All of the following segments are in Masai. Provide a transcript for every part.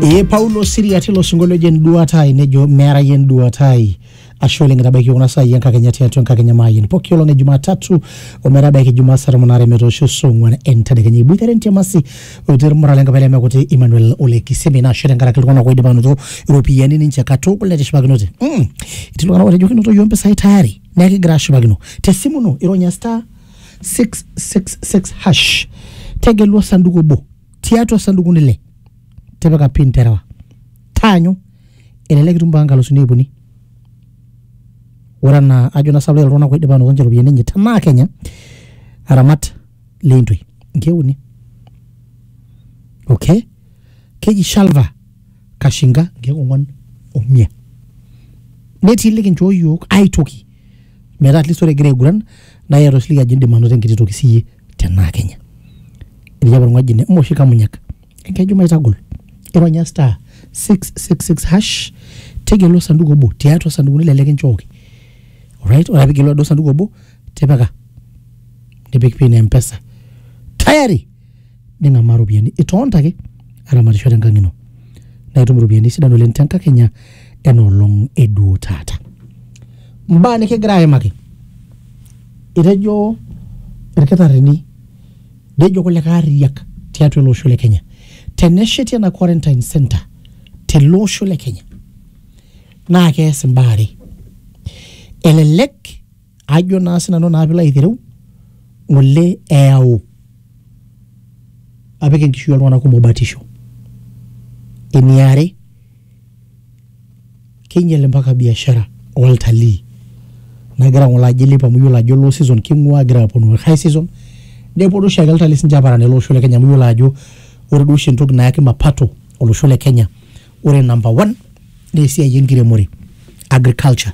ee paulo siria tilo sinkolio oji enduata ai nejo meera yie enduata ai ashe oleng etabaiki kuna saai enkakenya tiatua enkakenya maayian poki olong e jumatatu ometabaiki jumaa saa tomon aare metoosho saa ong'uan entadekenya iboitare entiamasi oitore irmurran lenkapa ele mekuti emmanuel ole kisemi naa ashe tenkaraki iltung'anak oidipa anoto iropiyiani ninche katukul netishipakinote mm. etii iltung'anak otejo kinoto yiok impisai tayari neeku kigira ashipakino tesimu ino ironya star 666 hash tegelu osanduku obo tiatua osandukuni le tipika pin terewa taanyu elelek itum mpaka nkalusuni iip uni ore anaa ajo na sababu iltung'anak oidipa anoto ninche iropiyiani enye tenaa kenya aramat leintoi inkeek uni okay keji shalva kashinga inkeek ong'wan omia netii likinchoo yiok aitoki metaa at least ore egira aiguran naa iyata osiligi ajo indim anoto enkiti toki siyie tenaa kenya etii apa olng'oji ene moshi kamunyak enkeju maitagol ironya star 666 hash tegelu osanduku obo tiatua osandukuni lele kinchooki right ore ake pigelu aduo sanduku obo tipika nipik pin e mpesa tayari ning'amaa iropiyiani itonta ake aramatisho tenkang ino naa itum iropiyiani sidan oleng tenkakenya enoolong eduo taata mbaa nikigira aimaki etejo irkitarrini nejo kulikae arriyiak tiatua ele osho le kenya tenesheti ena quarantine center tele osho le kenya naa kees imbaa are elelek ajo naa sinanu naa pilo aitereu ng'ole eyau apik enkishui oltung'anak kumok batisho eniare keinyial mpaka biashara oltalii nagira ng'ole ajo ilepu amu yiolo ajo low season king'ua egira aponu high season neponu oshiake iltalii sinche aparan ele osho le kenya amu yiolo ajo ore duo oshi entoki nayaki mapato olosho le kenya ore number one naa esiai enkiremore agriculture.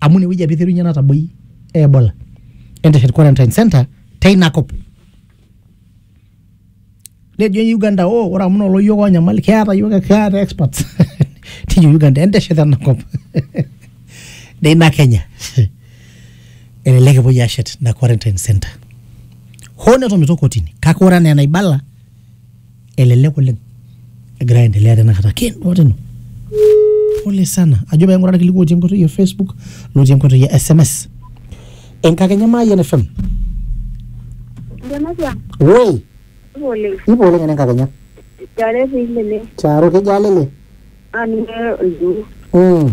amu inewueji apa iterunye nataboi ebola enteshet quarantine center teina kop nejo uganda oh, ore amu nolo yiok onyamal keeta yiok keeta experts tiji uganda enteshet enakop neina kenya elelek epuoi ashet ina quarantine center hoo netomito kotini kake ore anaa enaibala elelek oleng egira aendelea tenakata kendo tino pole sana ajo paing'ura irkiliku otii enkoitoi e facebook lotii enkoitoi e sms enkakenya maayian fm Ndematia, woi ngole, ipo oleng ena enkakenya jare pile ne, charo kejo alele ani ne, mm.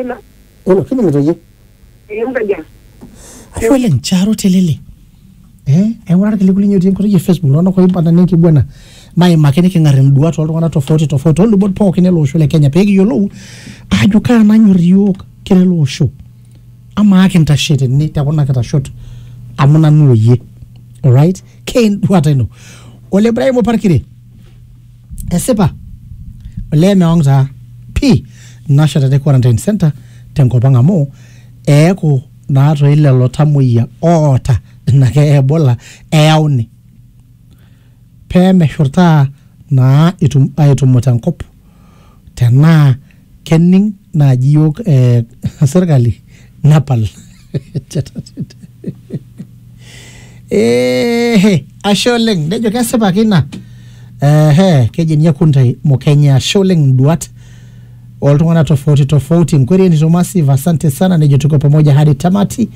Ina. Olo, kining'ito iyie? Ekinkaja. Ashe oleng, Charo Telele. Eh, aing'ura irkiliku linyi otii enkoitoi e Facebook iltung'anak oibala nenkiguana naimaki niking'ar induat oltung'anak tofauti tofauti olubot pookin ele osho le Kenya pekiyiolou ajo kaa nanyor iyiook kira ele osho. Amaa kintashe tene te kuna kitashot amu nanu oyie. Alright? Keenduata ino. Ole Ibrahim Oparkire. Esipa olee meong taa pii nasha te quarantine center tenkop ang amu eeku naa toi lelo tamuoyia oota ina keeya Ebola eyauni pee meshurtaa naa etum aitumuta enkop tenaa kening naaji iyiook eh, serkali nepal Eehe, ashe oleng nejo kesipa ake ina ehe keji ninye kuntai mokenye ashe oleng induat oltung'anak tofauti tofauti nkwerieni to massive asante sana nejo tuko pamoja hadi tamati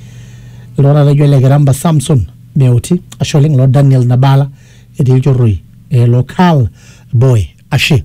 iltung'anak laijo ele kiramba samson meuti ashe oleng lo daniel nabala etii ilchorroi eh, lo Carl boy ashe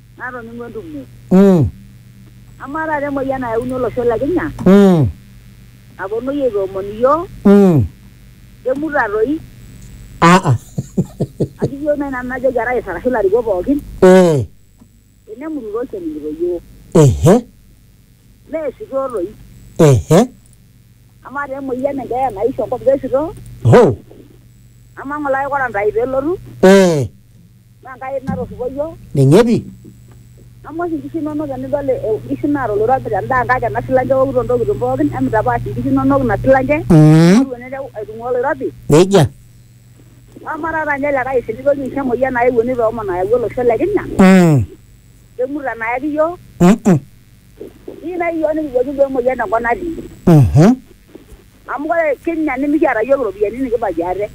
natoning'o entumo. Mm. Amaa taata emoyian nayauni olosho le Kenya Mm. naponoi aitoomon iyiook Mm. kemuta toi Ah ah. ajo iyiook nai nanu najoki arais arashu ilarikok pookin Eh. tenemutu toi kening'ito iyiook Ehe. meesitoo toi Ehe. amaa taa emoyian enkeeya naisho enkop kesitoo Ho. amaa ng'ole aikora ntae peelotu Eh. Naa Enkai natorripo iyiook. Ninye pi. Amu oshi inkishu inonok tenidol inkishu naata oloirobi tendaa Enkai tena silanke eokito intokitin pookin emitapaash inkishu inonok ina silanke amu elo nelotu aitung'ua oloirobi. Nejia. Amaa taata ninye likae oshi litoki aisho emoyian ayewuo nitoomon ayau olosho le Kenya emurto enayaki iyiook. Keyieu naaji iyiook nikijoki duo emoyian enkop natii. amu ore Kenya nimikiata iyiook iropiyiani nikibaiki ate.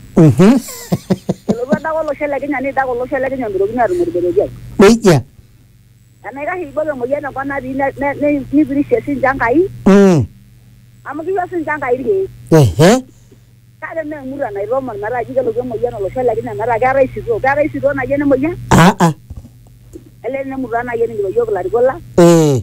Elotu adake olosho le Kenya neidake olosho le Kenya meitokini aatum olbereketai. Nejia. Enaikash eibok emoyian enkop natii ne- ne- ne- neipirishie siinche Enkai Mm. amu kiyieu siinche Enkai irkeek. Ehe. Kake mee emurua naitoomon metaa ji kelotu emoyian olosho le Kenya metaa keetae sitoo. Keetae sitoo naji ene moyian? Ah ah. Elee ene murua naai eningito iyiook ilarikok lang. Eh.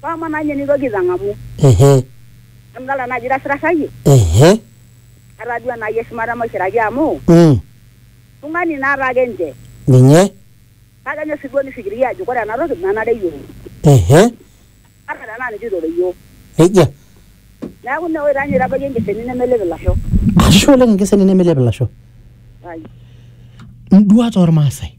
Pama nanye nitoki itang'amu. Ehe. Amu idolta naajo itasirasayie. Ehe. Etaa duo enaaji eshumata maishiraki amu. Mm. Tung'ani naa taake nche. Ninye. Kake enyor sii duo nifikiria ajo kore ena toki menare iyiook. Ehe. Ata tenaa ninche oitore iyiook. Nejia. Neeku ine woi taa ninye itabayie enkeseni nemelep ilasho. Ashe oleng enkeseni nemelep ilasho. Ai. Induat ormaasai.